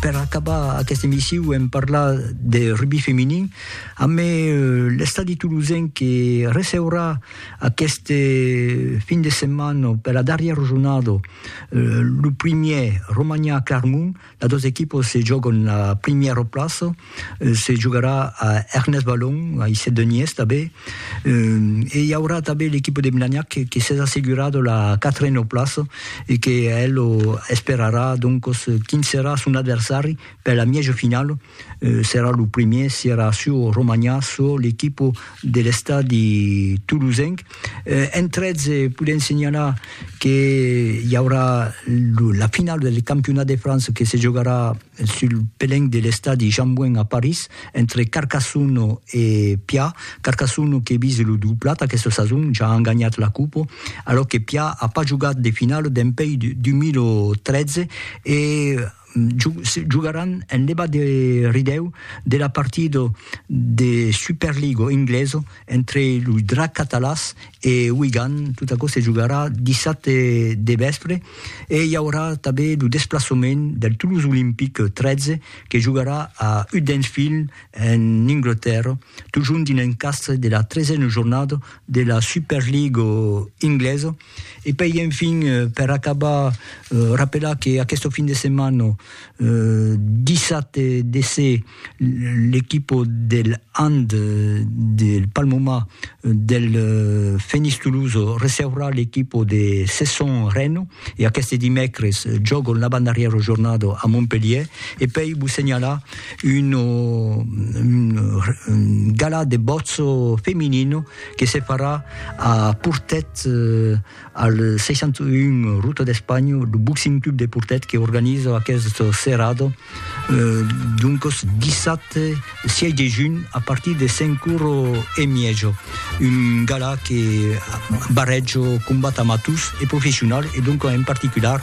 Per acabar aquesta emissiu hem parlat de rugbi feminin amb l'estadi tolosenc que receurà aquesta fin de setmana per la darrièra jornada lo primièr Romania-Clarmont, las dos equipas se jògan la primièra plaça. se jogarà a Ernest Balon, a Isset de Nies tanben, e i aurà tanben l'equipa de Blagnac que s'es assegurada la quatrena plaça e que el esperarà doncos quin serà son adversari per la mièja finala, serà lo primièr si era çò Romanhà, çò l'equipa de l'estadi tolosenc. Entretz podèm senhalar que i aurà la finala del campionat de França que se jogarà Sul pelenc de l'estadi Jean-Bouin a París, entre Carcassonne e Pià, Carcassonne que vise lo doblat aquesta sason, ja an ganhat la copa, alòc que Pià a pas jogat de finala dempuèi 2013 e jogaràn en levat de ridèu de la partida de Superliga inglesa Entre los Dracs Catalans e Wigan, tot aquò se jogarà dissabte de vèspre e i aurà tanben lo desplaçament del Toulouse Olympic 13 que jogarà a Huddersfield en Anglatèrra, totjorn dins l'encastre de la tresena jornada de la Super League inglesa. E puèi enfin, per acabar, rapelar que aquesta fin de setmana, dissabte de se. l'equipo del hand del Palmoma del Fenix Toulouse receurà l'equipo de Cesson Reno e aqueste dimècres jògon l'avantdarrièra jornada a Montpelhièr e pèi vos senhalar un galà de bòtz feminino que se farà a Portet Al 61 ruta d'Espanha, lo Boxing Club de Portet que organiza aquest serrado, doncos dissabte 6 de junh a partir de 5 oro e miejo, un gala que barrejo combat amators e professional e doncos en particular